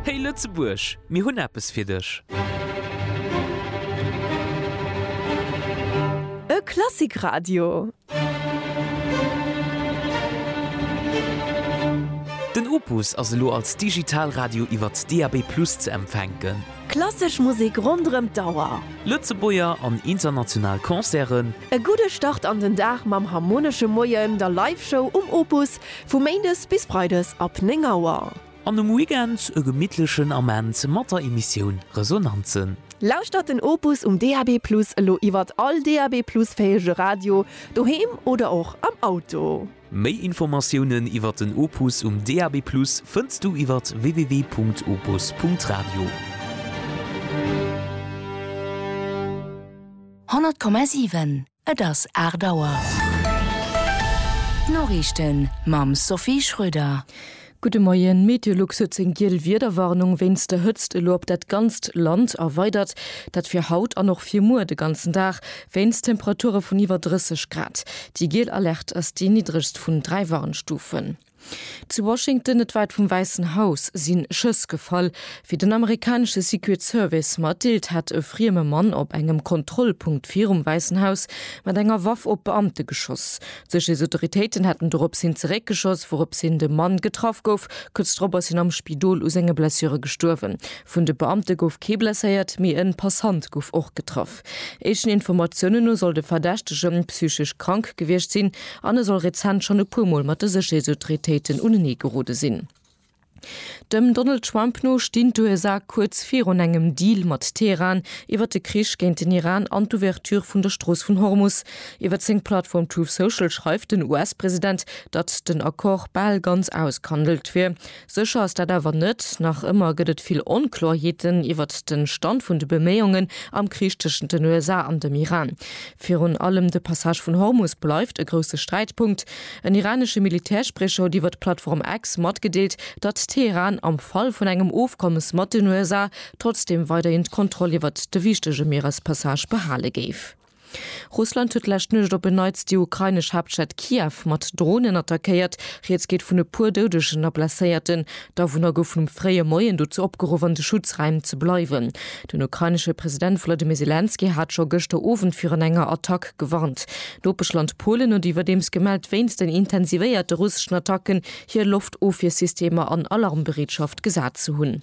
Hey Lëtzebuerg, mir hunn eppes fir dech! E Klassikradio! Den Opus ass elo als Digitalradio iwwert DAB+ ze empfänken. Klassesch Musek ronderëm d'Auer. Lëtzebuerger an international Concerten. E gudde Start an den Dag mam Harmonesche Moien, der Live-Show um Opus, Vu Méindes bis Freides ab 9 Auer. An um Weekend e gemittlechen Ament mat der Emissioun Resonanzen. Lauschtert den Opus um DAB+ elo iwwert all DAB+ fähege Radio, doheem oder och am Auto. Méi Informatiounen iwwert den Opus um DAB+ fënns du iwwert www.opus.radio. 100,7. Et ass 8 Auer. D'Noriichten mam Sophie Schröder. Gudde Moien. D'Meteolux huet seng giel Wiederwarnung wéinst der Hëtzt elo op dat ganzt Land erweidert. Dat fir haut an och fir muer de ganzen Dag, wéinst Temperature vun iwwer 30 Grad. Déi giel Alerte ass déi niddregst vun dräi Warnstufen. Zu Washington, net wäit vum Wäissen Haus, si Schëss gefall. Wéi den amerikanesche Secret Service matdeelt, hätt e frieme Mann op engem Kontrollpunkt virum Wäissen Haus mat enger Waff op Beamte geschoss. D'Sécherheetsautoritéiten hätten dorops hin zeréckgeschoss, wourops hin de Mann getraff gouf. Kuerz drop ass hien am Spidol u senge Blessure gestuerwen. Vun de Beamte gouf kee blesséiert, mee e Passant gouf och getraff. Éischten Informatiounen no soll de Verdächtege psychesch krank gewiescht sinn an e soll rezent schonn e puer Mol mat de Sécherheetsautoritéiten unenee gerode sinn. Dem Donald Trump no stinn d'USA kuerz virun engem Deal mat Teheran iwwer de Krich géint den Iran an d'Ouverture vun der Strooss vun Hormus. Iwwer seng Plattform Truth Social schreift den US-President, datt den Accord bal ganz ausgehandelt wier. Sécher ass dat awer net. Nach ëmmer gëtt et vill Onkloerheeten iwwert de Stand vun de Beméiungen am Krich tëschent den USA an dem Iran. Virun allem de Passage vun Hormus bleift e grousse Sträitpunkt. En iranesche Militärspriecher huet iwwer d'Plattform X matgedeelt, datt Teheran am Fall vun engem Ofkommes mat den USA trotzdeem weiderhin d'Kontroll iwwert de wichtege Mierespassage behale géif. Russland huet d'lescht Nuecht op en Neits déi ukrainesch Haaptstad Kiew mat Dronen attackéiert. Rieds geet vun e puer Doudegen a Blesséierten. D'Awunner goufen um fréie Moien dozou opgeruff, an de Schutzräim ze bleiwen. Den ukrainesche President Wolodymyr Selenskyj hat scho gëschter Owend virun enger Attack gewarnt. D'Nopeschland Polen huet iwwerdeems gemellt, wéinst den intensivéierte russeschen Attacken hir Loftofwiersystemer an Alarmbereetschaft gesat ze hunn.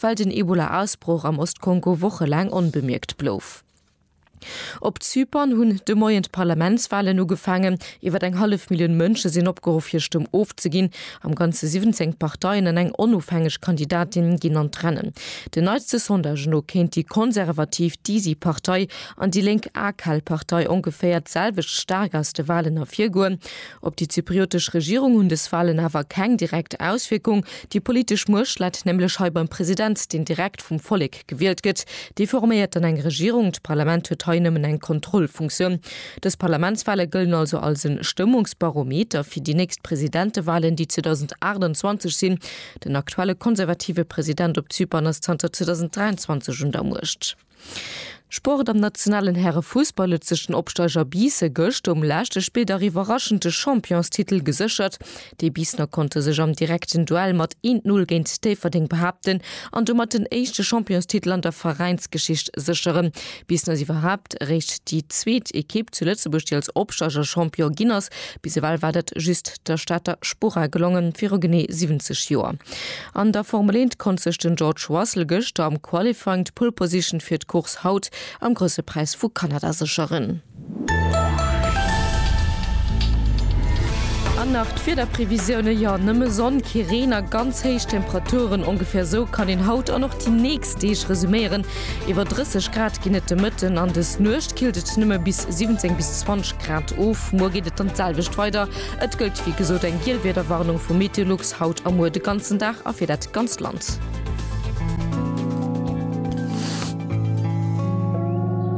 well den Ebola-Ausbroch am Ost-Kongo wochelaang onbemierkt blouf. Op Zypern hunn de Moien d'Parlamentswalen ugefaangen. Iwwer eng hallef Millioun Mënsche sinn opgeruff, hir Stëmm ofzeginn. Am Ganze 17 Parteien an eng onofhängeg Kandidatin ginn an d'Rennen. Den neitste Sondagen no kéint déi konservativ Disi Partei an déi lénk AKAL Partei ongeféier d'selwecht staark aus de Walen ervirgoen. Op déi zypriotesch Regierung hunn dës Walen awer keng direkt Auswierkung. Déi politesch Muecht läit nämlech hei beim President, deen direkt vum Vollek gewielt gëtt. Dee forméiert dann eng Regierung. D'Parlament huet hei nëmmen eng Kontrollfunktioun. Dës Parlamentswale gëllen also als e Stëmmungsbarometer fir déi nächst Presidentewalen, déi 2028 sinn. Den aktuelle konservative President op Zypern ass zanter 2023 un der Muecht. Sport, Am nationalen Härefussball huet sech den Opsteiger Biisse gëscht um leschte Spilldag iwwerraschend de Championstitel geséchert. Déi Biissener konnte sech am direkten Duell mat 1, 0 géint Déifferdeng behaapten an domat den éischte Championstitel an der Veräinsgeschicht sécheren. Biissen ass iwwerhaapt eréischt déi zweet Ekipp zu Lëtzebuerg, déi als Opsteiger Champion ginn ass. Bis ewell war dat just der Stater Spora gelongen, viru genee 70 Joer. An der Formel 1 konnt sech den George Russell gëschter am Qualifying d'Pole Position fir d'Course haut am Grousse Präis vu Kanada sécheren. An nach d'Wiederprevisiounen, jo nëmme Sonn, kee Reen a ganz héich Temperaturen. Ongeféier sou kann een haut an och déi nächst Deeg resuméieren. Iwwer 30 Grad ginn et de Mëtten an des Nuecht killt et nëmme bis 17 bis 20 Grad of. Muer geet et dann d'selwecht weider. Et gëllt wéi gesot eng giel Wiederwarnung vu Meteolux haut a muer de ganzen Dag a fir dat ganzt Land.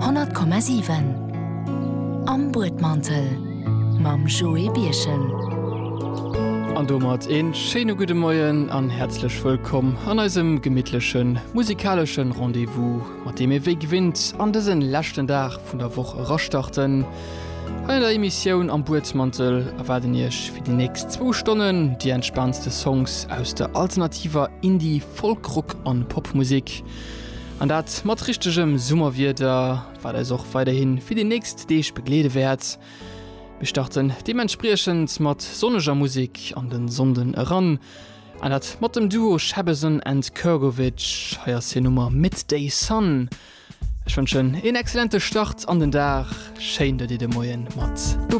Honnert Komma siwen Am Buedmantel mam Joé Birchen. An domat ee schéine gudde Moien an häerzlech wëllkomm an eisem gemittleche musikalesche Rendez-vous, mat deem ee wéi gewinnt an dëse leschten Dag vun der Woch erastarten. Hei an der Emissioun Am Buedsmantel erwaarden Iech fir déi nächst zwou Stonnen déi entspaantste Songs aus der alternativer Indie-, Folk-, Rock a Popmusek. An dat mat richtegem Summerwieder, wat eis och weiderhi fir déi nächst Deeg begleede wäert. Mir starten deementspriechend mat sonneger Musek an de Sonnden eran, an dat mat dem Duo Shabazzon and Kurgovich. Hei ass hir Nummer Midday Sun. Ech wënschen een excellente Start an den Dag. Schéin, datt Dir de Moien mat dobäi.